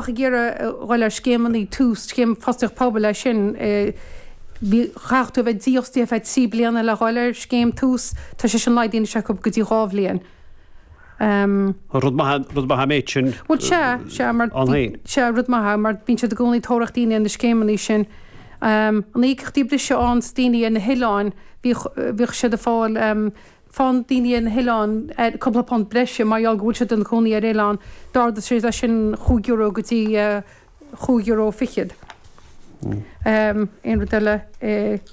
ach ag iarraidh a dhul ar scéimeanna, Tús, scéim Fostaíocht Pobail é sin, bhí, chaithfeadh tú a bheith dífhostaithe ar feadh trí bliana le dhul ar scéim Tús, tá sé sin laghdaithe acu go dtí dhá bhliain. Rud maith é, rud maith an méid sin ann féin. Sea, rud maith é, mar bíonn siad i gcónaí ag tóraíocht daoine ar na scéimeanna sin. Tá íocaíochtaí breise ann do dhaoine ar na hoileáin, bhíodh siad ag fáil, faigheann daoine ar na hoileáin cúpla punt breise mar gheall go bhfuil siad ina gcónaí ar oileán, d'ardaigh sé leis sin chúig euro go dtí chúig euro fichead. Aon rud eile?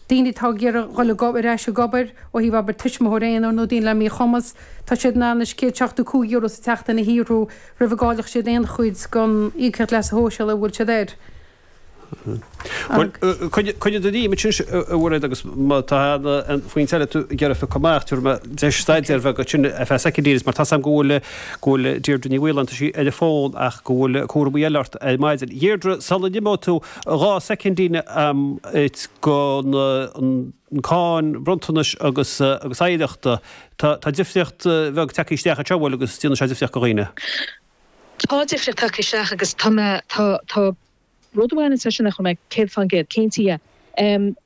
Daoine atá ag iarraidh dul ar ais ag obair, ó thaobh obair tuismitheoir aonair nó daoine le míchumas, tá siad in ann anois céad seachtó cúig euro sa tseachtain a shaothrú, roimh a gcáillfeadh siad aon chuid den Íocaíocht Leasa Shóisialaigh a bhfuil siad air. Bhuel, coinnigh i d'intinn é sin a Mhairéad agus má tá aon phointe eile tú ag iarraidh a bheith comh maith, tabhair mé deis staidéar a bheith agat sin ar feadh soicindín mar tá a fhios a'm go bhfuil, go bhfuil Deirdre Ní Mhaoláin, tá sí ar an bhfón ach go bhfuil cúramaí eile ort ar maidin. Dheirdre, sula n-imeoidh tú, dhá soicindín a'm ag dul go na, an cáin bhronntanais agus, agus oidhreachta, tá, tá difríocht bheag ag teacht isteach anseo, bhuel agus déanann sé difríocht go dhaoine. Tá difríocht ag teacht isteach agus tá mé, tá, tá rud amháin anseo nach bhfuil mé céad fán gcéad cinnte dhe.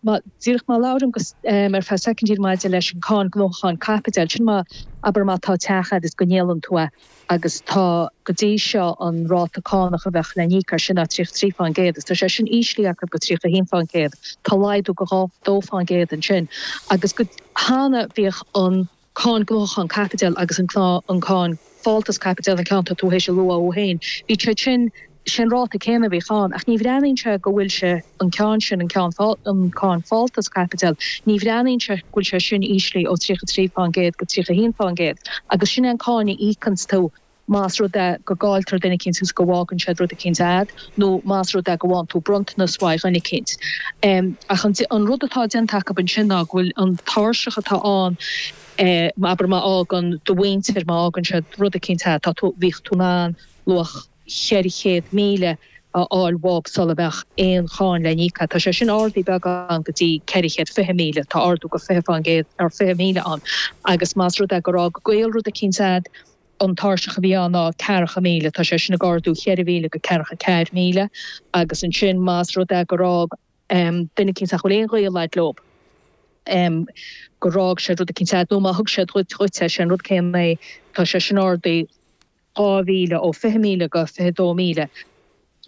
Má, díreach má labhraím go, ar feadh soicindín maidir leis an cáin gnóthachan caipitiúil, sin má, abair má tá teach agat is go ndíolann tú é agus tá, go dtí seo an ráta cánach a bheadh le n-íoc air sin ná tríocha trí fán gcéad is tá sé sin íslí acu go tríocha haon fán gcéad, tá laghdú go dhá, dó fán gcéad ansin agus go, cheana bhíodh an. cáin gnóthachan caipitiúil agus an cáin fáltas caipitiúil, an ceann atá tú théis a lua thú féin, bhí siad sin, sé an ráta céanna a bhíodh ann, ach ní bhreathnaíonn sé go bhfuil sé, an ceann sin, an ceann, an cáin fáltas caipitiúil, ní bhreathnaíonn sé go bhfuil sé sin íslí ó 33 fán gcéad go 31 fán gcéad agus sin é an cáin a íocanns tú Más rud é go gcáiltear duine eicínt agus go bhfágann siad rud eicínt a'd, nó más rud é go bhfaigheann tú bronntanas uaidh dhuine eicínt. Ach an rud atá déanta acub ansin ná go bhfuil an tairseach atá ann, abair má fhágann do mhuintir, má fhágann siad rud eicínt a'd, tá tú, bhíodh tú in ann luach cheithre chéad míle a fháil bhób sula mbeadh aon cháin le n-íoc a'd. Tá sé sin ardaí beagán go dtí ceithre chéad fiche míle, tá ardú go fiche fán gcéad ar fiche míle ann. Agus más rud é gur fhág gaol rud eicínt a'd, an tairseach a bhí ann ná ceathracha míle, tá sé sin ag ardú cheithre mhíle go ceathracha ceathar míle, agus ansin más rud é gur fhág duine eicínt nach bhfuil aon ghaol agat leo, gur fhág siad rud eicínt agat, nó má thug siad dhuit é, sé an rud céanna é, tá sé sin ardaí dhá mhíle, ó fiche míle go fiche dó míle.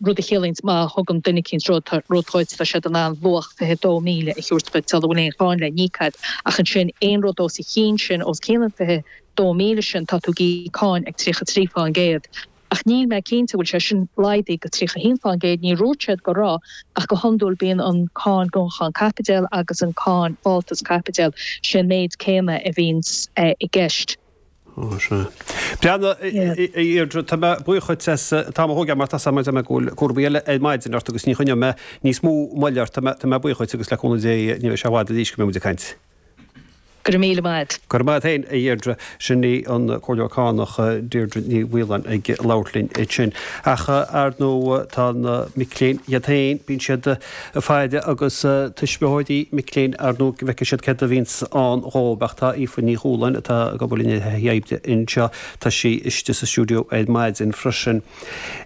rud a chiallaíonns má thugann duine eicínt rud dhuit, tá siad in ann luach fiche dó míle a thiúirt duit, sula bhfuil aon cháin le n-íoc agat, ach ansin, aon rud os a chionn sin, os cionn an fiche dó míle sin, tá tú ag íoc cáin ag tríocha trí fán gcéad. Ach níl mé cinnte an bhfuil sé sin laghdaithe go tríocha haon fán gcéad, níor úirt siad go raibh, ach go hiondúil bíonn an cáin gnóthachan caipitiúil agus an cáin fáltas caipitiúil, sé an méid céanna a bhíonns i gceist. Ó, sea. Bhuel, a Dheirdre, tá mé buíoch dhuit as t-am a thógáil mar tá a fhios agam go bhfuil cúramaí eile ar maidin ort agus ní choinneoidh mé níos mó moille ort. Tá mé, tá mé buíoch dhuit agus le cúnamh Dé ní bheidh sé i bhfad arís go mbeidh muid ag caint. Go raibh míle maith agat. Go raibh maith agat féin, a Dheirdre. Sin í an Comhairleoir Cánach, Deirdre Ní Mhaoláin ag labhairt linn ansin. Ach, ar ndóigh, tá na mic léinn iad féin, bíonn siad. ag faire agus tuismitheoirí mic léinn ar nó go bhfeice siad céard a bhíonns ann dhób ach tá Aoife Ní Chualáin, atá ag obair linn ar thaithí oibre anseo, tá sí istigh sa stiúideo ar maidin freisin.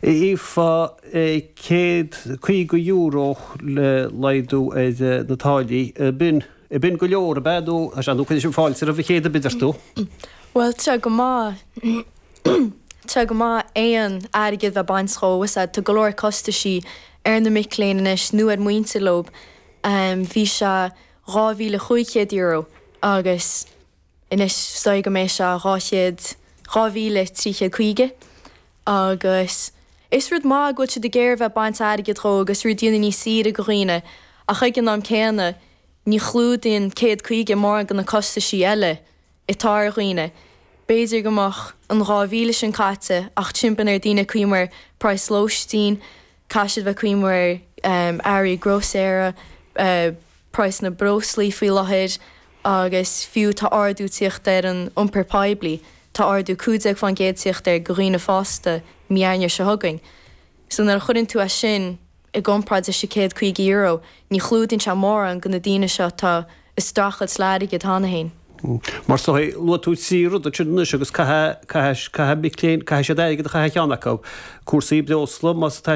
Aoife, Céad caoga euro le laghdú ar na táillí. B'in, b'in go leor, ab ea? Nó, sea, nó cuireadh sin fáilte roimh an chéad oiread ort tú? Bhuel, tá go maith, tá go maith, aon airgead a baint dhó, cos, tá go leor costaisí. ar na mic léinn anois nó ar muintir leob, bhí sé €2,500 agus anois is dóigh go mbeidh sé dhá chéad, dhá mhíle trí chéad caoga. Agus is rud maith go bhfuil siad ag iarraidh a bheith baint airgid dhó agus rud dhéanamh níos saoire go dhaoine ach ag an am céanna ní chlúdaíonn céad caoga mórán de na costaisí eile. atá ar dhaoine. B'fhéidir go mbeadh an 2,000 sin caite ach braitheann ar daoine íoc mar praghas lóistín, caithfidh siad bheith ag íoc mar earraí grósaera, praghas na breoslaí faoi láthair agus fiú tá ardú tíocht ar an iompar poiblí, tá ardú 15% tíocht air go dhaoine fásta mí Eanáir seo chugainn. So nuair a chuireann tú as sin. i gcomparáid leis an gcéad caoga euro, ní chlúdaíonn sé mórán de na daoine seo atá ag streachailt le airgead cheana féin. Mar seo é, luaigh tú trí rud ansin anois agus caithfidh, caithfidh, caithfidh mic léinn, caithfidh siad airgead a chaitheamh chaon cheann acu, cúrsaí breosla, más atá